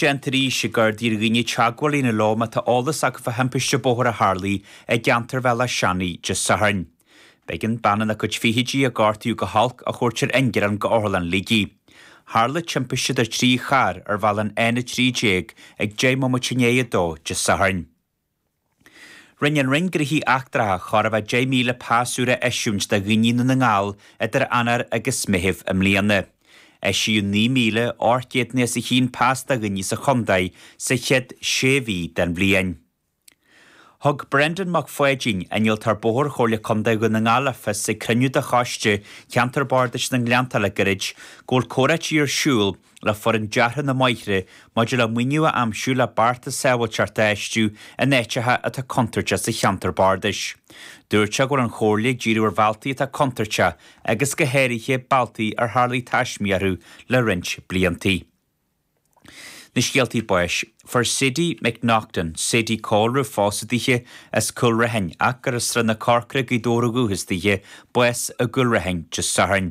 D'iarr Taoisigh Gardaí ar dhaoine teagmháil a dhéanamh leo má tá eolas acu fá thimpiste bóthair a tharla i gceantar Bhaile Átha Seanaidh Dé Sathairn. B'éigean bean ina cuid fichidí, a gortaíodh go holc, a thabhairt ar ingearán go Otharlann Shligigh. Tharla timpiste idir trí charr ar bhealach an N13 ag deich mbomaite i ndiaidh a dó Dé Sathairn. Rinne an Roinn Gnoithe Eachtracha chóir a bheith 10,000 pas úr a eisiúint do dhaoine i nDún na nGall idir Eanáir agus Meitheamh i mbliana. Eisíodh 9,800 nó os a chionn pas do dhaoine sa chontae sa chéad sé mhí den bhliain. Thug Brendan Mac Pháidín, Innealtóir Bóthar Chomhairle Contae Dhún na nGall le fios ag cruinniú de Choiste Cheantar Bardais na nGleanntach le gairid go bhfuil comhráití ar siúl le foireann deartha na mBóithre maidir le maoiniú a aimsiú le bearta sábháilteachta a fheistiú in áiteacha atá contúirteach sa cheantar bardais. Dúirt sé go bhfuil an Chomhairle ag díriú ar bhealtaí atá contúirteach agus go háirithe bealtaí ar tharla taismí orthu le roinnt blianta. Na scéaltaí báis, Fuair Sadie McNaughton, Sadie Cholroe pósta daoithe as Cúl Raithin ach gur i Srath na Corcrach Gaoth Dobhair ba dhúchas daoithe bás i gCúl Raithin Dé Sathairn.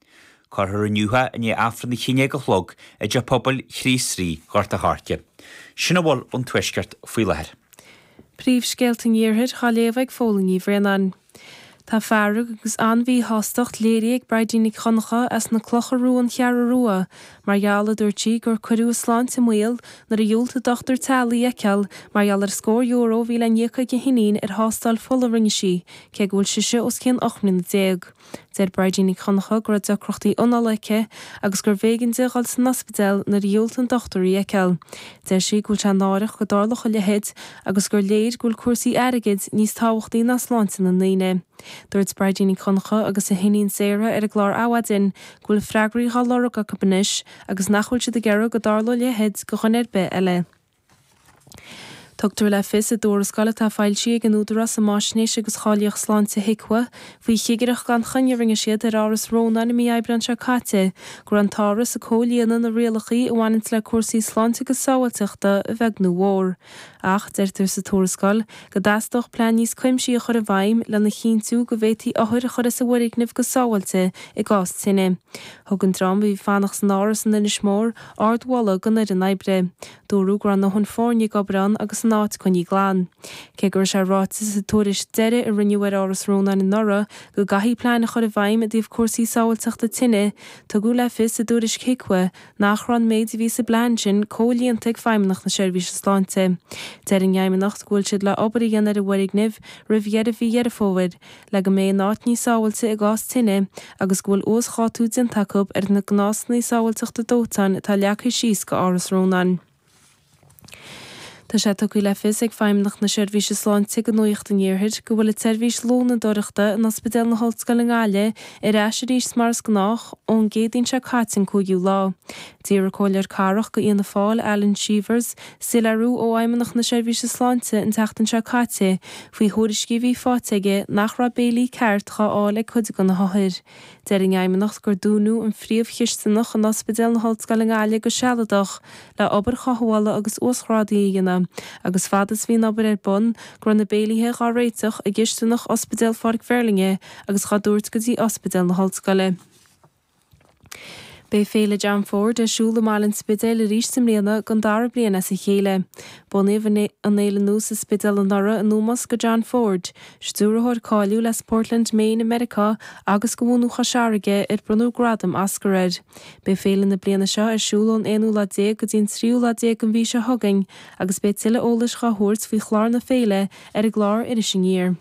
Cuirfear inniu í i ndiaidh Aifreann a haon déag a chlog i dTeach Pobail Chríost Rí, Ghort a' Choirce. Sin a bhfuil ón Tuaisceart faoi láthair. Príomhscéalta an Iarthair dhá léamh ag Póilín Ní Bhraonáin. Tá fearg agus an-mhíshástacht léirithe ag Bridie Nic Dhonncha as na Clocha Rua-An Cheathrú Rua mar gheall, a dúirt sí, gur cuireadh a sláinte i mbaol nuair a dhiúltaigh dochtúir teaghlaigh í a fheiceáil mar gheall ar scór euro a bhí le n-íoc ag a hiníon ar thástáil fola a rinne sí cé go bhfuil sise os cionn ocht mbliana déag. Deir Bridie Nic Dhonncha go raibh deacrachtaí análaithe aici agus gurbh éigean di a dhul san ospidéal nuair a dhiúltaigh an dochtúir í a fheiceáil. Deir sí go bhfuil sé náireach go dtarlódh a leithéid agus gur léir go bhfuil cúrsaí airgid níos tábhachtaí ná sláinte na ndaoine. Dúirt Bridie Nic Dhonncha agus a hiníon Sarah ar an gclár Adhmhaidin go bhfuil freagraí dhá lorg acu anois agus nach bhfuil siad ag iarraidh go dtarlódh a leithéid go dhuine ar bith eile. Tugtar le fios i dtuarascáil atá foilsithe ag an Údarás um Fháisnéis agus Cháilíocht Sláinte, HIQA, faoi chigireacht gan choinne a rinne siad ar Áras Rónáin i mí Aibreán seo caite, go raibh an t-áras ag comhlíonadh na rialacha a bhaineanns le cúrsaí sláinte agus sábháilteachta a bheag nó mhór. Ach, deirtear sa tuarascáil, go dteastódh plean níos cuimsithí a chur i bhfeidhm lena chinntiú go bhféadfaí othair a chur as an bhfoirgneamh go sábháilte i gcás tine. Thug an dream a bhí ag fanacht san Áras in Inis Mór ardmholadh don fhoireann oibre. Dúradh go raibh a ndóthain foirne ag obair ann agus an áit coinnithe glan. Cé go raibh sé ráite sa tuairisc deiridh a rinneadh ar Áras Rónáin anuraidh go gcaithfí plean a chur i bhfeidhm i dtaobh cúrsaí sábháilteachta tine, tugadh le fios sa tuairisc HIQA nach raibh an méid a bhí sa bplean sin comhlíonta ag Feidhmeannacht na Seirbhíse Sláinte. Deir an Fheidhmeannacht go bhfuil siad le obair a dhéanamh ar an bhfoirgneamh roimh dheireadh mhí Dheireadh Fómhair. le go mbeidh an áit níos sábháilte i gcás tine agus go bhfuil uasdhátú déanta acu ar na gnásanna sábháilteachta dóiteáin atá leagtha síos go Áras Rónáin. Tá sé tugtha le fios ag Feidhmeannacht na Seirbhíse Sláinte go Nuacht an Iarthair go bhfuil an tseirbhís lónadóireachta in Ospidéal na hOllscoile i nGaillimh ar ais arís mar is gnách ón gCéadaoin seo caite an 5ú lá. D'iarr an comhairleoir cathrach go Fhianna Fáil, Alan Cheevers, Soiléiriú ó Fheidhmeannacht na Seirbhíse Sláinte an tseachtain seo caite faoi thuairiscí a bhí faighte aige nach raibh béilí ceart dhá fháil ag cuid de na hothair. Deir an Fheidhmeannacht gur dúnadh an phríomhchisteanach in Ospidéal na hOllscoile i nGaillimh go sealadach le obair chothabhála agus uasghrádaithe a dhéanamh agus fad is bhí an obair ar bun go raibh na béilíthe dhá réiteach i gcisteanach Ospidéal Pháirc Mheirlinne agus dhá dtabhairt go dtí Ospidéal na hOllscoile. Beidh Féile John Ford ar siúl i mbaile an Spidéil arís i mbliana, don dara bliain as a chéile. Bunaíodh an fhéile nua sa Spidéal anuraidh in ómós go John Ford, stiúrthóir cáiliúil as Portland, Maine i Meiriceá agus go bhunadh Chois Fharraige, ar bronnadh gradam Oscar air. Beidh féile na bliana seo ar siúl ón aonú lá déag go dtí an tríú lá déag den mhí seo chugainn agus beidh tuilleadh eolais dhá thabhairt faoi chlár na féile ar an gclár Iris Aniar.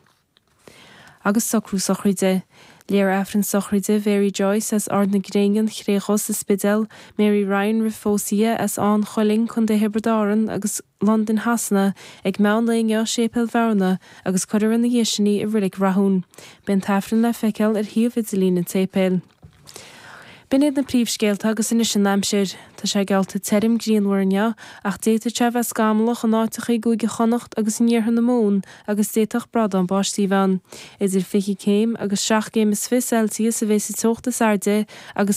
agus socrú sochraide. Léifear Aifreann sochraide Mhary Joyce as Ard na Gréine, An Chré Dhubh sa Spidéal, Mary Ryan roimh phósadh di, as Áth an Chuilinn, Co. Thiobraid Árann, agus Londain Shasana ag meán lae inniu i Séipéal Bhearna, agus cuirfear ina dhiaidh sin í i Reilig Rathúin. Beidh an tAifreann le feiceáil ar shuíomh idirlín an tséipéil. B'in iad na príomhscéalta agus anois an aimsir. Tá sé geallta tirim grianmhar inniu ach d'fhéadfadh sé a bheith scamallach in áiteacha i gCúige Chonnacht agus in iarthar na Mumhan agus d'fhéadfadh brádán báistí a bheith ann. Idir 20 céim agus seacht gcéim is fiche Celsius a bheidh sa teocht is airde agus.